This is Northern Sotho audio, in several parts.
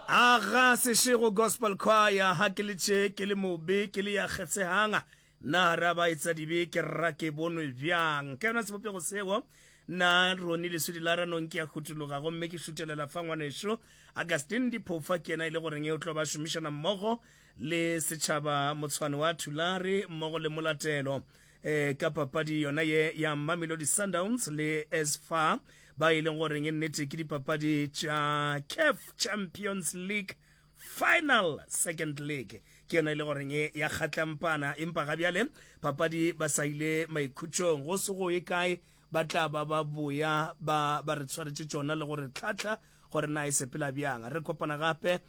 Aga Seshego Gospel Choir, Ha ke le tše, ke le mobe, ke le ya kgetshehang, Na ra ba etsa dibe, ke rra ke bonwe bjang? Ka yona sebopego seo, nna Ronnie Leswidi la Ranong ke a hutologa gomme ke šutelela fa ngwanešu Augustine Diphofa ke yena e le goreng o tlo ba šomišana mmogo le setšhaba motshwane wa Thulare mmogo le Molatelo e ka papadi yona ye ya Mamelodi Sundowns le as far ba e leng goreng e nnete ke dipapadi tša CAF Champions League final second league ke yona e le goreng e ya kgatlampana empa ga bjale papadi ba sa ile maikhutšong go se go ye kae Ba tla ba ba boya ba ba re tshwaretše tšona le go re hlahla gore na e sepela bjang. Re kopana gape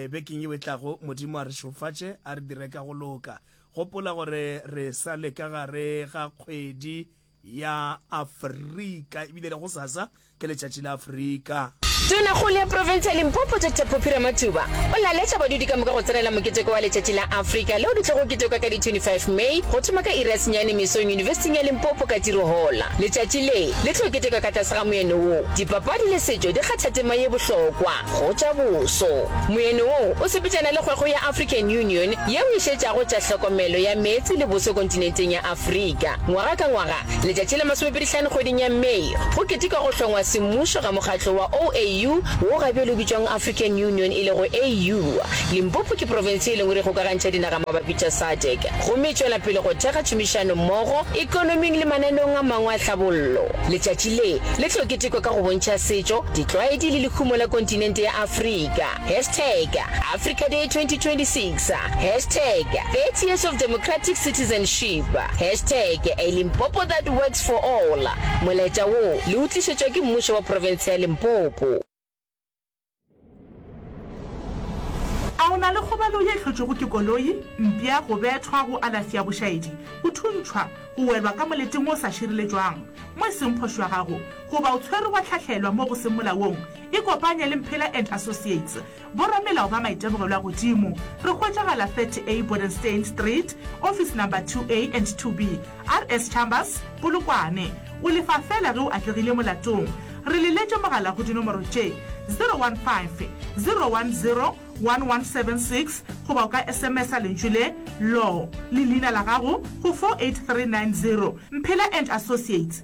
bekeng yeo e tlago. Modimo a re šofatše, a re dire ka go loka. Gopola gore re sa le ka gare ga kgwedi ya Afrika, ebile le gosasa ke letšatši la Afrika. Tonakgolo ya profense ya Limpopo Doctor Phophi Ramathuba o laletša badudi ka moka go tsenela moketeko wa letšatši la Afrika leo le tlogo ketekwa ka di 25 May go thoma ka iri ya senyane mesong yunibesiting ya Limpopo ka Tirohola. Letšatši le le tlo ketekwa ka tlase ga moyeno wo Dipapadi le setšo di kgatha tema ye bohlokwa go tša boso. Moyeno wo o sepetšana le kgwego ya African Union yeo e šetšago tša hlokomelo ya meetse le boso kontinenteng ya Afrika. Ngwaga ka ngwaga Letšatši la masomepedihlano kgweding ya May go ketekwa go hlongwa semmušo ga mokgatlo wa OAU, wo ga bjale o bitšwang African Union e lego AU. Limpopo ke profense ye lengwe re kgokagantšha dinaga mabapi tša SADC, gomme e tšwela pele go thekga tšhomišano mmogo ekonoming le mananeong a mangwe a tlhabollo. Letšatši le, le tlo ketekwa ka go bontšha setšo, ditlwaedi le lehumo la kontinente ya Afrika. Hashtag Africa Day 2026 Hashtag 30 years of democratic citizenship Hashtag A Limpopo that works for all Molaetša wo le o tlišetšwa ke Mmušo wa Profense ya Limpopo. A o na le kgobalo ye hlotšwego ke koloi, mpša, go bethwa, go alafi ya bošaedi, go thuntšhwa, go welwa ka moleteng o sa šireletšwang mo e seng phošo ya gago, goba o tshwerwe wa hlahlelwa mo go seng molaong? Ikopanye le Mphela and Associates, boramelao ba maitemogelo a godimo. Re hwetšagala 30A Bodenstein Street, office number 2A and 2B, RS Chambers, Polokwane. O lefa feela ge o atlegile molatong. Re le letše mogala go dinomoro tše, 015 010 1176 goba o ka sms-a lentšu le, Law, le leina la gago go 48390. Mphela and Associates.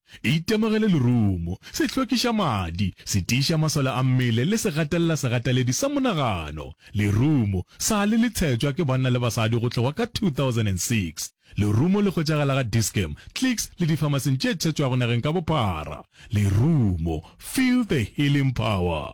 E itemogele lerumo, se hlwekiša madi, se tiiša masole a mmele le se gatelela segateledi sa monagano. Lerumo, sa le le tshetšwa ke banna le basadi go tloga ka 2006. Lerumo le hwetšagala ga Dis-Chem, Clicks le difamasing tše tshetšwago nageng ka bophara. Lerumo, feel the healing power!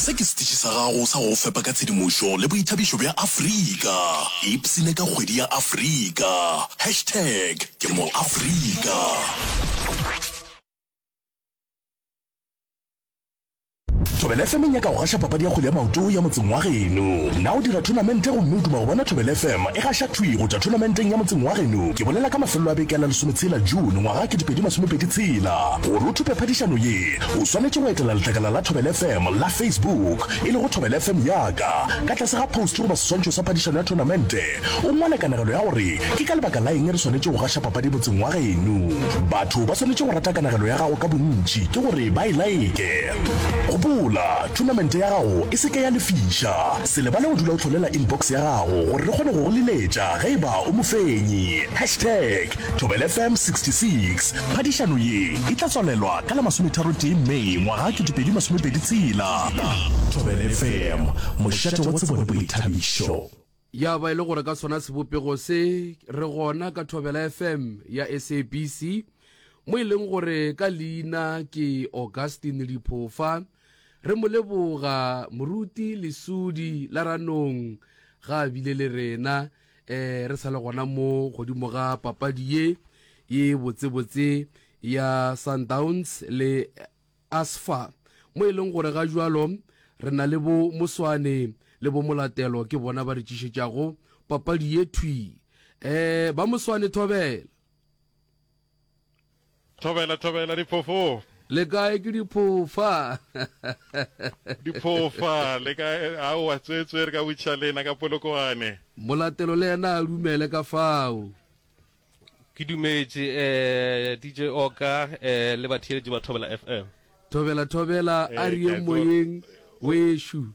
Se ke setiši sa gago sa go go fepa ka tshedimošo le boithabišo bja Afrika. Ipsine ka kgwedi ya Afrika. Hashtag ke moAfrika. Thobela FM e nyaka go gaša papadi ya kgwele ya maoto ya motseng wa geno. Na o dira thonamente gomme o duma go bona Thobela FM e gaša thwi go tšwa thonamenteng ya motseng wa geno? Ke bolela ka mafelelo a beke la lesometshela June ngwaga 2026. Gore o thope phadišano ye, o swanetše go etela letlakala la Thobela FM la Facebook, e lego Thobela FM Ya Ka. Ka tlase ga post goba seswantšho sa phadišano ya thonamente, o ngwale kanegelo ya gore ke ka lebaka la eng re swanetše go gaša papadi motseng wa geno. Batho ba swanetše go rata kanegelo ya gago ka bontši ke gore ba e like. Gopola, thonamente ya gago e se ke ya lefiša. Se lebale go dula o hlolela inbox ya gago gore re kgone go go leletša ge e ba o mofenyi. Hashtag. Thobela FM 66. Phadišano ye e tla tswalelwa ka la masometharo tee May ngwaga 2020 tshela. Thobela FM, mošate wa tsebo le boithabišo. Ya ba e le gore ka sona sebopego se re gona ka Thobela FM ya SABC mo e leng gore ka leina ke Augustine Liphofa re mo leboga moruti lesudi la ranong ga a bile le rena eh re sa le gona mo godimo ga papadi ye ye botsebotse ya sundowns le asfa mo e leng gore ga jalo re na le bo moswane le bo molatelo ke bona ba re tšišetšago papadi ye thwi um ba moswane thobela Thobela, thobela, diphoofo. Le kae ke diphofa? Diphofa, le kae? Aowa, tswetswe re ka butša lena ka Polokwane. Molatelo le yena a dumele ka fao. Ke dumetše, eh, DJ Oka, eh, le batheeletši ba Thobela FM. Thobela, thobela, a re yeng moyeng, wešu.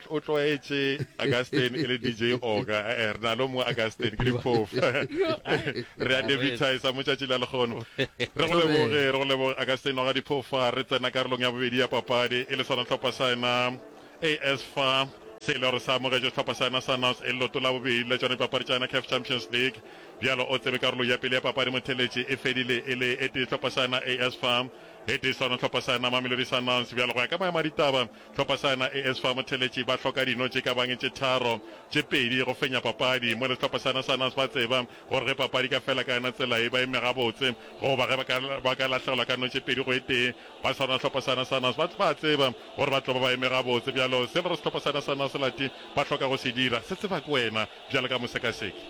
o tlwaetše Augustine e le DJ Oga eh, eh, re na lo mongwe Augustine ke diphofu re a debitisa mo tšatši la lekgono re go leboge re go leboge Augustine Oga diphofa re tsena karolong ya bobedi ya papadi e le sona tlhopha sa ena AS fa se e le gore sa amogetše setlhopha sa ena sa nas e loto la bobedi la tsone dipapadi tsa ena caf champions league bjalo o tsebe karolo ya pele ya papadi motheletše e fedile e le e tee setlhopha sa ena as fa Ge tee sa yona hlopha sa yona Mamelodi Sundowns bjalo go ya ka maemo a ditaba hlopha sa yona AS fa Motheletši ba hloka dino tše ka bang tše tharo tše pedi go fenya papadi mola sehlopha sa yona Sundowns ba tseba gore ge papadi e ka fela ka yona tsela e ba eme gabotse goba ge ba ka lahlegelwa ka no tše pedi go e tee ba sa rona hlopha sa yona Sundowns ba ba tseba gore ba tlo ba ba eme gabotse bjalo se lore sehlopha sa yona Sundowns se lati ba hloka go se dira se tseba ke wena bjalo ka mosekaseki.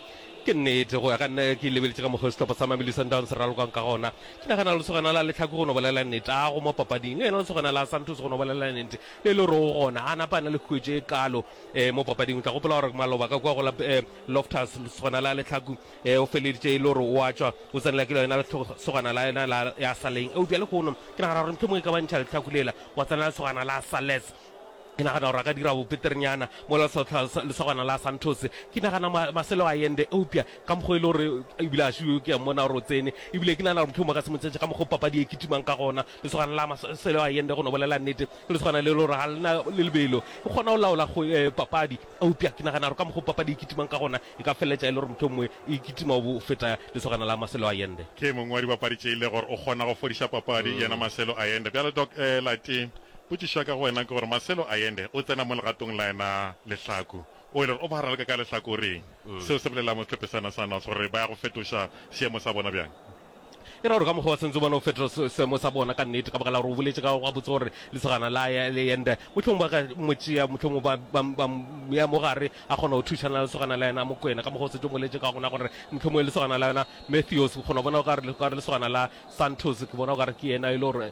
Ke nnete, go ya ka nna, ke lebeletše ka mokgwa sehlopha sa Mamelodi Sundowns se ralokang ka gona. Ke nagana lesogana la lehlaku go no bolela nnete, a go mo papading, le yena lesogana la Santos go no bolela nnete, le le roo gona, a napa a na le huetšo e kaalo eh mo papading. O tla gopola gore maloba ka kua go la eh Loftus, lesogana la lehlaku eh o feleditše e le gore o a tšwa, o tsenela ke lona lesogana la yona la ya Saleng. Eupša lehono, ke nagana gore mohlomongwe e ka ba ntšha lehlaku lela, gwa tsena lesogana la Sales. Ke nagana gore a ka dira bopeterenyana mola lesotlha lesogana la Santos. Ke nagana ma, Marcelo Allende, eupša ka mokgwa e le gore ebile a šio ke a mmona gore o tsene, ebile ke nagana gore mohlomongwe ka se mo tšetše ka mokgwa papadi e kitimang ka gona. Lesogana la Marcelo Allende, go no bolela nnete, ke lesogana le le gore ga le na le lebelo, e kgona go laola go, eh, papadi, eupša ke nagana gore ka mokgwa papadi e kitimang ka gona e ka feleletša e le gore mohlomongwe e kitima go feta lesogana la Marcelo Allende. Ke mongwe wa dibapadi tše e le gore o kgona go fodiša papadi, yena Marcelo Allende. Bjale Doc, eh, Latin, Potšišo ya ka go wena ke gore Marcelo Allende o tsena mo legatong la yena lehlaku, o e le gore o ba raloka ka lehlakoreng. Seo se bolelela mo sehlophesana sa North gore ba ya go fetoša seemo sa bona bjang? E ra gore ka mokgwa wa sentso bona o fetoša se, seemo sa bona ka nnete ka baka la gore o boletše ka gabotse gore lesogana la Allende mohlomong ba ka mo tšea, mohlomong ba, ba, ba mo ya mo gare a kgona go thušana le lesogana la yena Mokwena, ka mokgwa o setse o boletše ka gona gore mohlomong lesogana la yona Matthews, o kgona go bona o ka re, o ka re lesogana la Santos ke bona o ka re ke yena e le gore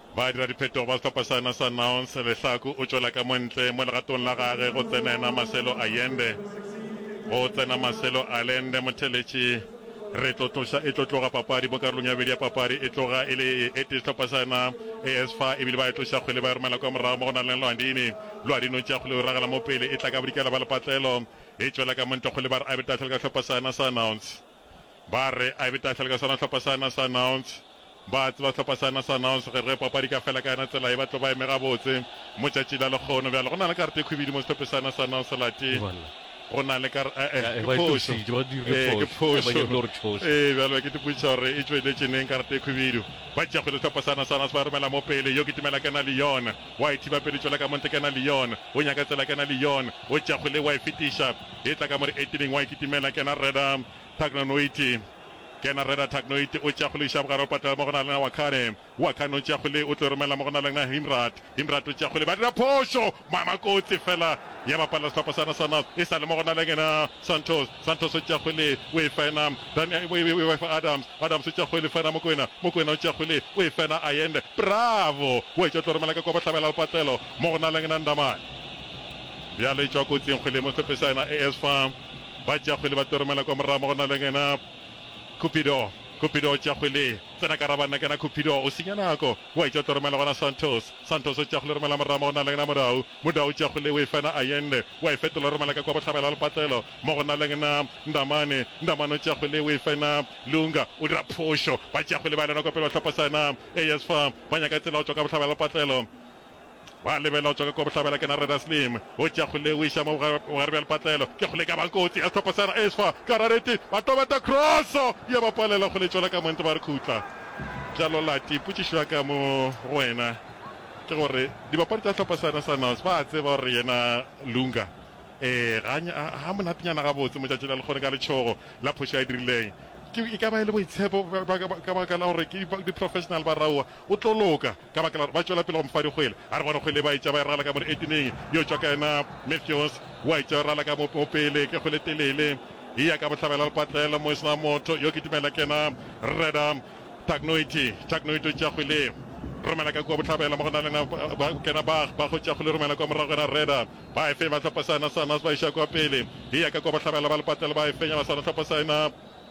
Badiradiphethogo ba sehlopha sena sa Nouns, Lehlaku o tšwela ka mo ntle mo legatong la gage go tsena yena Marcelo Allende. Go tsena Marcelo Allende, motheletši. Re tlo tloša, e tlo tloga papadi mo karolong ya bobedi ya papadi. E tloga e le e e tee sehlopha sa yena AS fa, ebile ba e tloša kgwele ba e romela kwa morago mo go na leng Lwandini. Lwandini o tšea kgwele o ragela mo pele, e tla ka bodikela ba lepatlelo. E tšwela ka mo ntle kgwele ba re Abitathel ka sehlopha sa yena sa Nouns. Ba re a be tafela ka sona hlopha sa na sa Nouns. Ba a tseba hlopha sa na sa Nouns ge re papadi ka fela ka yona tsela ye ba tlo ba eme gabotse mo tšatši la lekgono. Bjale go na le karete e khwibidu mo sehlophe sa na sa Nouns lati. Go na le kar eh eh ke phošo ee ke phošo ee bjale ke tipotšiša gore e tšweletše neng karete e khwibidu. Ba tšea kgwele hlopha sa na sa Nouns ba romela mo pele yo kitimela kena le yona wa e thiba pele tšwela ka mo ntle kena le yona o nyaka tsela kena le yona o tšea kgwele wa e fetiša E tla ka mo re etileng wa e kitimela Kena Reda Tagnoiti Kena Reda Tagnoiti o tšea kgole o iša bogare o patela mo go na le na Wakhane Wakhane o tšea kgole o tlo romela mo go na le na Himrat Himrat o tšea kgole ba dira phošo Mama kotsi fela ya bapalla sehlopha sa na sa North e sa le mo go na le ngena Santos Santos o tšea kgole o e fena Dan e e e fa Adams Adams o tšea kgole fena Mokoena Mokoena o tšea kgole o e fena Ayende bravo o etša o tlo romela ka kwa bohlabela le patlelo mo go na le ngena Ndamane Bjale e tšwa kotsing kgwele mo hlophesa yena AS fa ba tšea kgwele ba tlo romela kwa morago mo go na le yena Cupido. Cupido o tšea kgwele tsena ka ra banna kena Cupido o senya nako wa e tšwa o tlo romela gona Santos. Santos o tšea kgwele romela morago mo go na le yena Modau. Modau o tšea kgwele o e fa yena Ayende wa e fetola romela ka kwa bohlabela ya lepatlelo mo go na le yena Ndamane. Ndamane o tšea kgwele o e fa yena Lunga o dira phošo ba tšea kgwele ba ya le yona kwa pele ba hlopha sa yena AS fa ba nyaka tsela go tšwa ka bohlabela ya lepatlelo. Gwa lebelelwa tšoka kua bohlabela ke na Reda Slim. O tšea kgole o iša mo bogare bja lepatlelo. Ke kgole e ka bang kotsi. Ya sehlopha sa Raesfwa ka rareti ba tobeta kroso ya ba palela kgole e tšwela ka monto ba re khutla. Bjalo Lati, potšišo ya ka mo go wena ke gore dibapadi tša sehlopha sena sa North ba a tseba gore yena Lunga ee ga a monatenyana gabotse mo tšatši la lekgone ka letšhogo la phošo a e dirileng. Ke e ka ba e le boitshepo ka baka la gore ke di-professional ba Raua o tlo loka. ka baka la gore ba tšwela pele go mfa dikgwele. A re bona kgwele ba etša ba e rala ka mo leetineng, yo tšwa ka yena Matthews, wa etša yo rala ka mo mo pele ke kgwele telele, e ya ka bohlabela lepatlelo mo e sena motho, yo ke dumela ke yena Reda Tagnoiti. Tagnoiti o tšea kgwele romela ka kua bohlabela mo go na le yena ba kena Bach, Bach o tšea kgwele romela kua morago yena Reda, ba e fenya ba hlopha sa yena Sanas ba iša kua pele, e ya ka kua bohlabela ba lepatlelo ba e fenya ba sala hlopha sa yena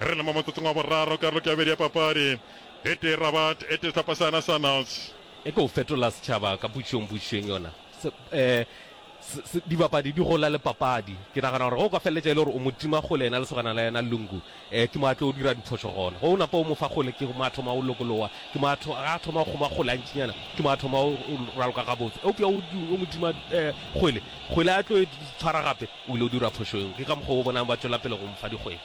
Re le mo motsotsong wa boraro karolong ke ya bobedi ya papadi. E tee Rabat, e tee sehlopha sa Nationals. E tlo fetola setšhaba ka pušong, pušong yona se, eh, se, dibapadi di gola le papadi. Ke nagana gore ge o ka feleletša e le gore o mo tima kgole yena lesogana la yena Lungu, eh, ke mo a tlo dira diphošo gona. Ge o napa o mo fa kgole ke mo a thoma o lokologa, ke mo a tho, ga a thoma go kgoma kgole gantšinyana ke mo a thoma o raloka gabotse. Eupša o, o mo tima eh, kgole, kgole a tlo e tshwara gape o ile o dira phošo eo. Ke ka mokgwa o bonang ba tšwela pele go mo fa dikgwele.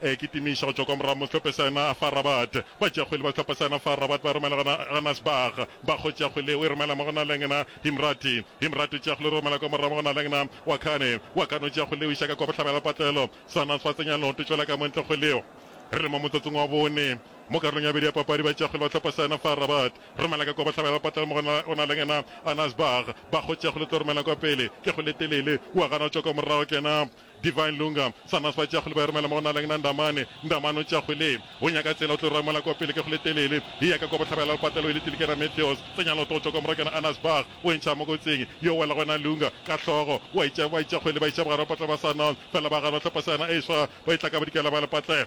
E kitimiša go tšwa kwa morago mo sehlophe sa yona fa Rabat. Batšeakgwele ba sehlopha sa yona fa Rabat ba romela gona ga Nasbagh. Bakgo tšeakgwele o e romela mo go na leng na Himrati. Himrati o tšeakgwele o romela kwa morago mo go na leng na Wakane. Wakane o tšeakgwele o iša ka kwa bohlabela patlelo. Sanas ba tsenya leoto tšwela ka mo ntle go leo. Re le mo motsotsong wa bone mo karolong ya bobedi ya papadi. Batšeakgwele ba sehlopha sa yona fa Rabat romela ka kwa bohlabela patlelo mo go na leng na Anasbagh. Bakgo tšeakgwele o tlo romela kwa pele ke go le telele. O a gana go tšwa kwa morago kena Divine Lunga, Sanas ba tšeago le ba e romela mo go na leng na Ndamane, Ndamane o tšeago le go nyaka tsela o tlo rwa mola kwa pele ke go le telele, e ya ka kwa bohlabela le patelo e le tile ke ra Meteos, tsenya loto go tšwa kwa Morakana Anas Bach, o entšha mo kotsing yo o wela go na Lunga ka hlogo, wa itšea ba itšeago le ba iša bogare ba patlela ba Sanas, fela ba gare ba hlopha seana e swa ba e hlakabadikela ba le patlela.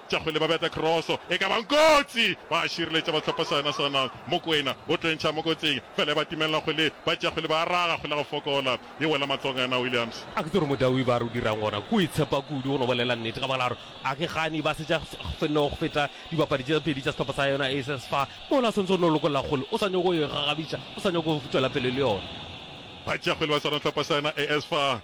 Tša kgwele ba beta kroso e ka ba nkotsi, ba a šireletša ba hlopha saena sa nang. Mokwena o tlwentšha mo kotsing, fela e ba timelela kgwele, ba tšea kgwele ba raga, kgwele go fokola e wela matsogong a yena Williams. A ke tsebe gore Modaui ba re o dirang gona ke go itshepa kudu go no bolela nnete ka baka la gore a ke gane ba setša fnno go feta dibapadi tše pedi tša sehlopha sa yona Aces fa mola o swantse o no lokolla kgwele, o sa nyake go e gagabitša, o sa nyake go tšwela pele le yona. Ba tšea kgwele ba swara sehlopha sa yona Aces fa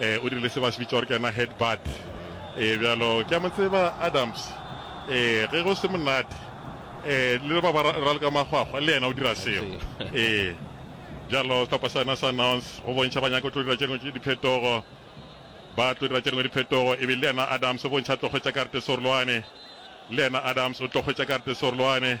E, o dirile se ba se bitša gore ke yena head bud. E, bjalo ke a mo tseba Adams. E, ge go se monate, e, le ba ba raloka makgwakgwa, le yena o dira seo. E, bjalo sehlopha sa yena sa Nouns, go bontšha ba nyaka go tlo dira tše dingwe tše diphetogo, ba tlo dira tše dingwe diphetogo, e be le yena Adams o bontšha tlo hwetša kartesorolwane, le yena Adams o tlo hwetša kartesorolwane.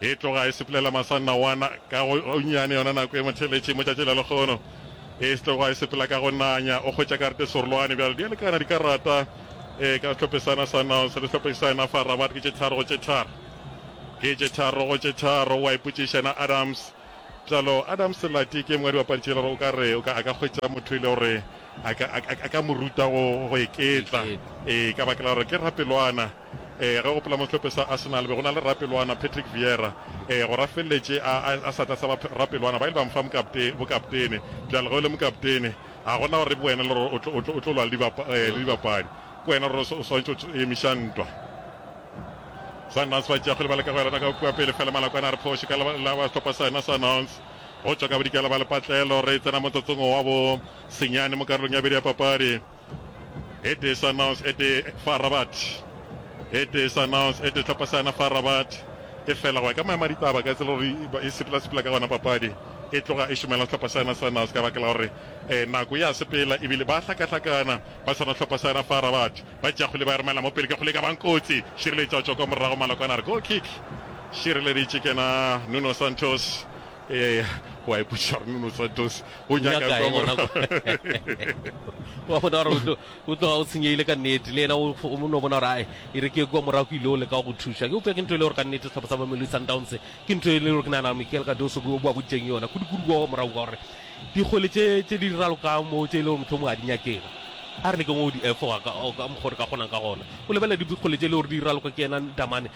E tloga e sepelela masanna wana ka go gonnyane yona nako e motheletše mo tšatši la lekgono. E stloga e sepela ka go nanya. O hwetša karate serolwane bjalo. Di a lekana dikarata e ka sehlope sana Sundowns le sehlope sa yena fa Rabat. Ke tše tharo go tše tharo. Ke tše tharo go tše tharo. O a ipotšiša yena Adams. Bjalo Adams Lati ke e mongwe wa dibapadi tše le gore o ka re o ka a ka hwetša motho e le gore a ka a ka a ka mo ruta go go iketla. Ee ka baka la gore ke rapelwana. Ee, re gopola mo sehlope sa Arsenal be go na le rapelwana Patrick Vieira. Ee, go rafelletše a, a, a sa tla sa ba rapelwana, ba ile ba mo fa mokapte, bokaptene. Bjale ge o le mokaptene, ga go na gore ke wena le gore o tlo, o tlo, o tlo lwa le, dibapa, eh, le dibapadi. Ke wena gore o swanetše o emiša ntwa. Sundowns ba tšea kgwele ba leka go elana ka kua pele, fela Malakwane a re phoše ka la, la ba sehlopa sa yona Sundowns. Go tšwa ka bodikela ba lepatlelo, re tsena motsotsong wa bo senyane mo karolong ya bedi ya papadi. It is announced ete fa Rabat. It is announced ete hlopha sa yona fa Rabat e fela go ya ka maemo a ditaba ka tsela gore e sepela-sepela ka gona papadi e tloga e šomela hlopha sa yona sa Nantes ka baka la gore nako ya sepela ebile ba hlakahlakana ba tshwana hlopha sa yona fa Rabat ba tšakgole ba romela mo pele ka kgole ka bang kotsi šireletša tšwa kwa morago malokwana re go kick šireleditše kena Nuno Santos Eya, o a ipotšiša gore Nuno Santos o nyaka eng gona kwa. Wa bona gore o tloga o tshenyegile ka nnete, le yena o no bona gore ae e re ke kwa morago ke ile o leka go thuša. Ke upša ke ntho e le gore ka nnete sehlopha sa Mamelodi Sundowns ke ntho e le gore ke nagana Michael Cardoso o ba boditseng yona kudu-kudu kwa morago ka gore dikgole tše di ralokang moo tše e le gore motlho mongwe a di nyakega a re le ke go di efoga ka mokgwa re ka kgonang ka gona o lebelela dikgole tše e le gore di raloka ke yena Damane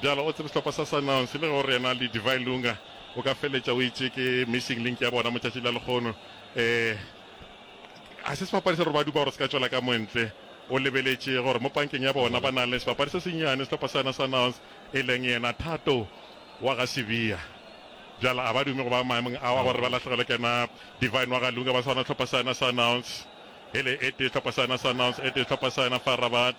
Bjalo o tsebe sehlopha sa Sundowns le ge o re yena Ledivine Lunga o ka feletša o itše ke missing link ya bona motšatši la lekgono. Um, ga se sebapadi se re ba dupa gore se ka tšwela ka montle. O lebeletše gore mo pankeng ya bona ba na le sebapadi se senyane sehlopha sa yona Sundowns e leng yena Thato wa ga Sibiya. Bjalo a ba dume go ba maemong ao a gore ba lahlegelwe ke na Divine wa ga Lunga ba swana sehlopha sa yona Sundowns. Hele e tee sehlopha sa yona Sundowns e tee sehlopha sa yona Far Rabat.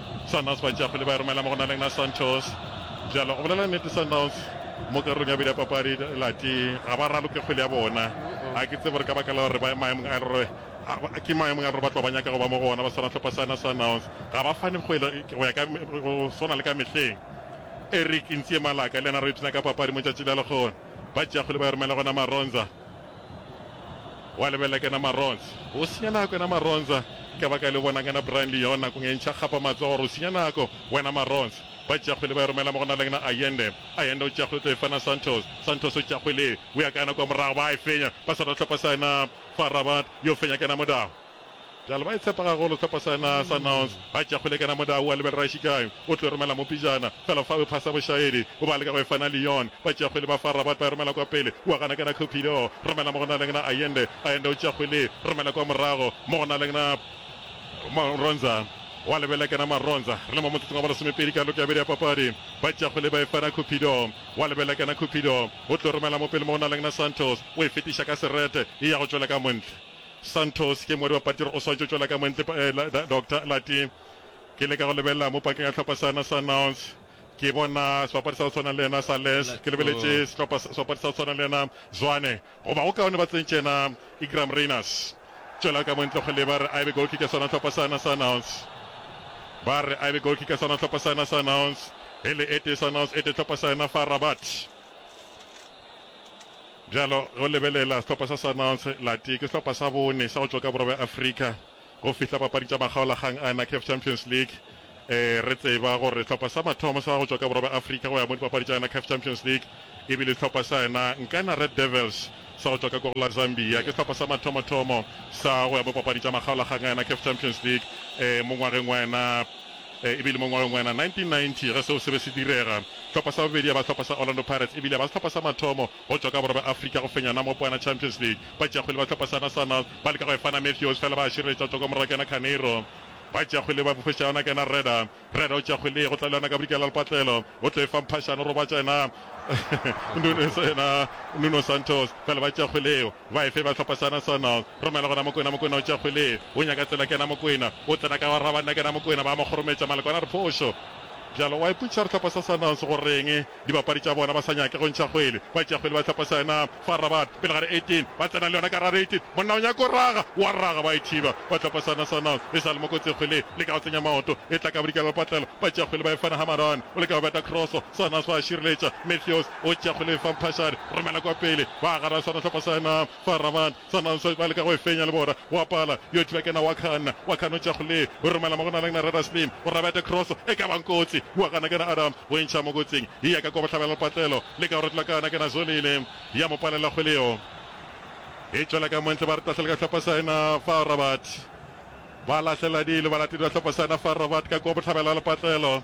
Sundowns ba tšea pele ba e romela mo go Naleng na Santos. Bjalo o bolela nnete Sundowns mo karolong ya bobedi ya papadi lati ga ba raloke kgwele ya bona. Ga ke tsebe gore ka baka la gore ba maemong a e le gore ke maemong a e le gore ba tloga ba nyaka go ba mo go ona ba swana hlopha sa na Sundowns. Ga ba fane kgwele go ya ka go swana le ka mehleng. Eric Ntsie Malaka le yena re ipshina ka papadi mo tšatši la lekgono. Ba tšea kgwele ba e romela gona Maronza. Wa lebelela ke na Maronza. O senya nako yena Maronza. Ka baka le o bonang yena Brian Leon nakong e ntšha kgapa matsogo gore o senya nako wena Maronza. Ba tšea kgwele ba e romela mo go na le yena Allende. Allende o tšea kgwele o tlo e fana Santos. Santos o tšea kgwele e o ya ka yena kwa morago ba a e fenya ba sa ra hlopha sa yena Fa Rabat yo fenya ke yena Modaho. Bjale ba e tshepa gagolo sehlopha sena sa Nouns. Ba tšea kgolekana Modau wa lebelela e šikae. O tlo romela mo pejana. Fela fao e phasa bošaedi. O ba leka go e fa na Lyon. Ba tšea kgwele ba fa Rabat ba e romela kwa pele. O a gana ke na Cupido. Romela mo go na leng na Ayende. Ayende o tšea kgwele. Romela kwa morago. Mo go na leng na Maronza. O a lebelela ke na Maronza. Re le mo motsotsong wa bolesomepedi karolong ke ya bobedi ya papadi. Ba tšea kgwele ba e fa na Cupido. O a lebelela ke na Cupido. O tlo romela mo pele mo go na leng na Santos. O e fetiša ka serete. E ya go tšwela ka montle. Santos ke moedi wa patiri o swantšo tšwela ka moentle pa, eh, la, Doctor Lati. Ke leka go lebelela mo pakeng ya hlopha sana sa Nouns. Ke bona sebapadi sa go tshwana le yena sa Les. Ke lebeletše sehlopha sa, sebapadi sa go tshwana le yena Zwane. Goba go kaone ba tsentše yena Igram Rayners. Tšwela ka moentle go leba re a ebe goalkicker sona hlopha sana sa Nouns. Ba re a ebe goalkicker sona hlopha sana sa Nouns. Hele e tee sa Nouns e tee hlopha sa yena fa Rabat. Bjalo ge o lebelela sehlopha sa Sundowns, latee ke sehlopha sa bone sa go tšwa ka Borwa bja Afrika go fihla papadi tša makgaolakgang a NACAF Champions League. Ee, re tseba gore sehlopha sa mathomo sa go tšwa ka Borwa bja Afrika go ya mo dipapadi tša NACAF Champions League e bile sehlopha sa yena Nkana Red Devils sa go tšwa ka Kogla, Zambia. Ke sehlopha sa mathomothomo sa go ya mo dipapadi tša makgaolakgang a NACAF Champions League ee mo ngwageng wa yena. E bile mo ngwageng wa 1990 ge seo se be se direga. Hlopha sa bobedi ya ba hlopha sa Orlando Pirates e bile ya ba sehlopha sa mathomo go tšwa ka Borwa bja Afrika go fenya Namopoana Champions League. Batšeakgwele ba hlopha sa Nacional ba leka go e fana Matthews fela ba a šireletša tsoko morago kena Carneiro. Batšeakgwele ba bofetša yona kena Reda. Reda o tšea kgwele ye go tla le yona ka bodikela ya lepatlelo. O tlo e fa Mphašane o robatša yena Nuno Santos fela ba tšea kgwele yeo. Ba efe ba hlopha sona sona romela gona Mokwena Mokwena o tša kgwele o nyaka tsela kena Mokwena o tsena ka wa raba nna kena Mokwena ba mo kgorometša Maloko a na re phošo bjalo wa ipotšiša re hlopha sa sona se go reng dibapadi tša bona ba sa nyake go ntšha kgwele ba tšea kgwele ba hlopha sona fa Rabat pele gare 18 ba tsena le yona ka ra 18 monna o nyaka o raga wa raga ba e thiba ba hlopha sona sona e sa le mokotse kgwele le ka go tsenya maoto e tla ka bodikela lepatlelo ba tšea kgwele ba e fana ha Maran o le ka go beta cross sona se ba šireletša Matthews O tšegole fa Mphashane romela kwa pele ba gare a swara hlopha sa yena fa Raman Sananso ba leka go e fenya le bona wa pala yo thiba kena wa khanna wa khanna o tšegole o romela mo go naleng na Reda Slim o rabete cross e ka bang kotsi wa gana kena Adam o entšha mo kotsing e ya ka kwa bohlabela le patlelo le ka go retla kana kena Zolile ya mo palela kgwele yo e tšwela ka montle ba re tahlele ka hlopha sa yena fa Rabat ba lahlela dilo ba latedi ba hlopha sa yena fa Rabat ka kwa bohlabela le patlelo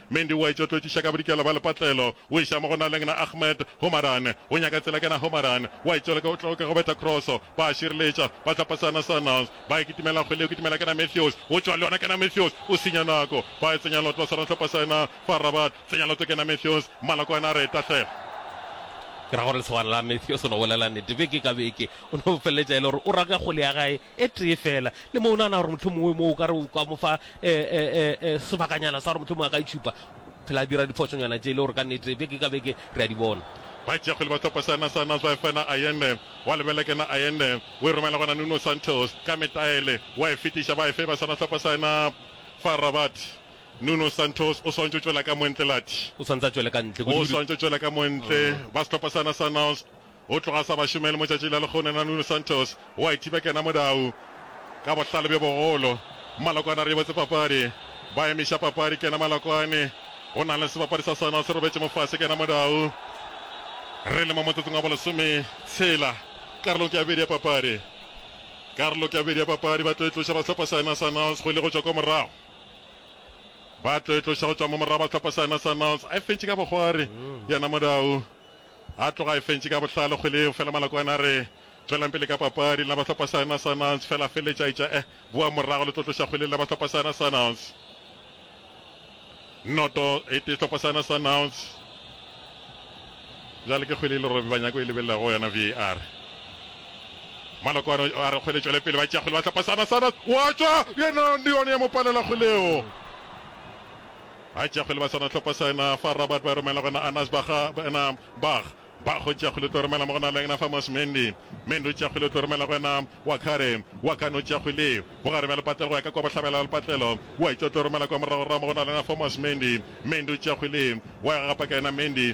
Mendi o a etšo tlotšiša ka bodikela bja lepatlelo, o iša mo go Naleng na Ahmed. Homaran o nyaka tsela ke na Homaran o a etšo leka o tloka go betha kroso, ba a šireletša, ba tla pasa na Sundowns. Ba e kitimela kgwele o kitimela ke na Matthews, o tšwa le yona ke na Matthews, o senya nako. Ba e tsenya lotlo sa rahlopha sa na fa Rabat, tsenya lotlo ke na Matthews, Malokwane a re e tahlela. Ke ra gore lesogana la Matthews o no bolela nete beke ka beke, o no feleletša e le gore o raka kgwele ya gae e tee feela, le mo o nagana gore mohlomongwe mo o ka re o ka mo fa sebakanyana sa gore mohlomongwe a ka itšhupa, phela a dira diphošonyana tše e le gore ka nnete beke ka beke re a di bona. Batšeakgwele ba sehlopha sa Nasser Nasr Bafana Ayenne wa lebela ke na Ayenne o e romela gona Nuno Santos ka metaele wa e fetiša ba e feba sona sehlopha sa na FAR Rabat. Nuno Santos o swantšo tšwela ka montle Lathi. O swantse a tšwele ka ntle. O swantšo tšwela ka montle ba sehlopha sa na sa Nasr. Go tloga sa ba šomele motšatši la lekgone na Nuno Santos o a ithiba kena modau ka bohlale bjo bogolo. Malokwane a riabotse papadi ba emiša papadi kena Malokwane go na le sebapadi sa Sundowns se robetše mo fase kena modau. Re le mo motsotsong wa bolesome tshela karolong ke ya bobedi ya papadi. Karolo ke ya bobedi ya papadi ba tlo e tloša ba sehlopha saena Sundowns go ile go tšwa kwa morago. Ba tlo e tloša go tšwa mo morago ba sehlopha saena Sundowns a e fentše ka bogwari yena modau A tloga a e fentše ka bohlale kgwele eo, fela Malakwane a re, Tšwelang pele ka papadi, lena ba sehlopha sa yona Sundownz, fela a feleletša a etša, Eh, boang morago le tlo tloša kgwele, lena ba sehlopha sa yona Sundownz. Noto, e tee sehlopha sa yona Sundownz. Bjale ke kgwele e le Robbie Banyako e lebelelago go yona VAR. Malokwane a re kgwele tšwele pele, ba tšea kgwele ba sehlopha sa yona Sundownz, wa tšwa, yena le yone ya mo palela kgwele eo. A tšeago le ba sona tlhopo sa yena fa Robert ba romela gona Anas ba ga ena Bach Bach o tšeago le tlo romela mo gona le yena fa Mos Mendy Mendy o tšeago le tlo romela go yena Wakare Wakane o tšeago le mo gare bja lepatlelo go ya ka kwa bohlabela bja lepatlelo wa itša o tlo romela kwa morago ra mo gona le yena fa Mos Mendy Mendy o tšeago le wa ya ga gapa ka yena Mendy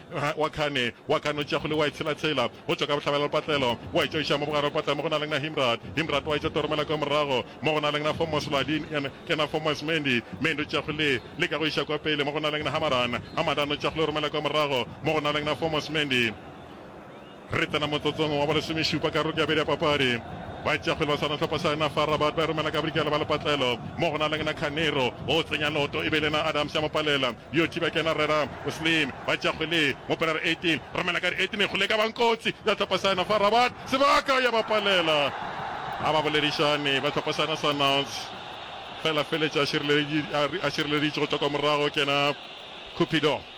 Ga wa khane wa ka no tšea kgole wa e tshela-tshela go tšwa ka bohlabela le patlelo, wa e tšwa iša mo bogare le patlelo mo go na leng na Himrat. Himrat wa e tšwa toromela kwa morago mo go na leng na Fomos Ladin en en na Fomos Mendi. Mendi o tšea kgole le ka go iša kwa pele mo go na leng na Hamadan. Hamadan o tšea kgole o romela kwa morago mo go na leng na Fomos Mendi. Re tsena motsotsong wa bolesomešupa karolong ya bedi ya papadi. Baitšeakgwele ba sehwanahlopha sa yona FAR Rabat ba romela ka bodikela ba lepatlelo mo go na le Ngna Khanero o tsenya loto e be e le yena Adams ya mo palela yo thiba ke yena Rera Slim. Baitšeakgwele mo Pilar 18 romela ka di 18 e kgole e ka bang kotsi ya hlopha sa yona FAR Rabat sebaka ya ba palela ga ba boledišane ba hlopha sa yona sa Nantes fela feletša a šireleditše go tšwa kwa morago ke yena Cupido.